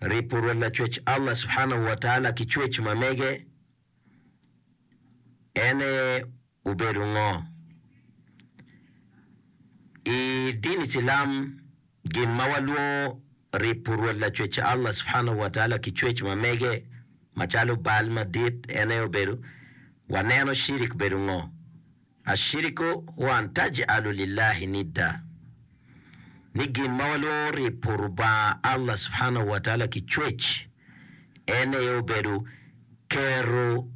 Ripo Rwot Lacwec Allah Subhanahu wa Taala ki cwec ma mege, en aye obedo ngo? I dini cilam, gin ma walwongo ripo Rwot Lacwec Allah Subhanahu wa Taala ki cwec ma mege macalo bal madit en aye obedo, waneno cirik bedo ngo? Ashiriku wa an taj'alu lillahi nidda, ni gin ma walwongo ribo Lubanga Allah subhanahu wa taala ki cwec, en aye obedo keto,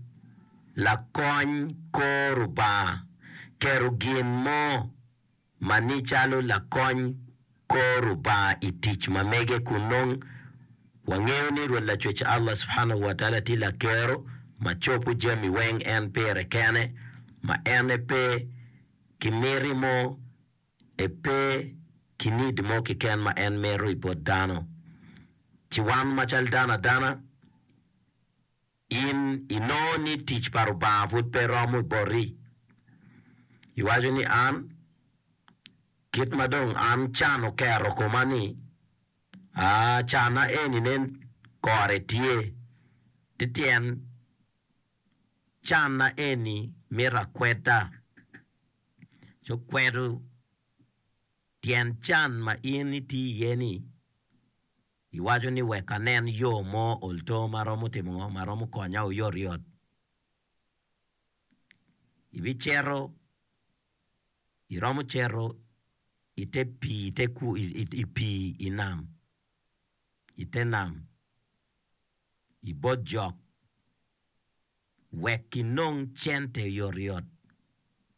lakony, kor Lubanga, keto gin mo. ma ni calo lakony kor Rubanga i tic ma mege kun nongo wangeyo ni Rwot Lacwec Allah subhanahu wa taala tye Lakero ma cobo jami weng en pire kene ma en e pe ki miti mo e pe ki need mo kiken ma en mito i bot dano ci wan ma cal dano adana In inongo ni tic pa Rubanga pud pe romo i boti. Iwaco ni, An, kit ma dong an can oketo koma ni, aa, canna eni nen kore tye. Ti tyen canna eni mito akweda. Ci kwedo tyen can ma in itye iye-ni. Iwaco ni wek anen yo mo olto ma romo timo ngo ma romo konya oyotyot. Ibicito iromo cito i te pii i te ku i pii i nam i te nam i bot jok wek inong cente oyotyot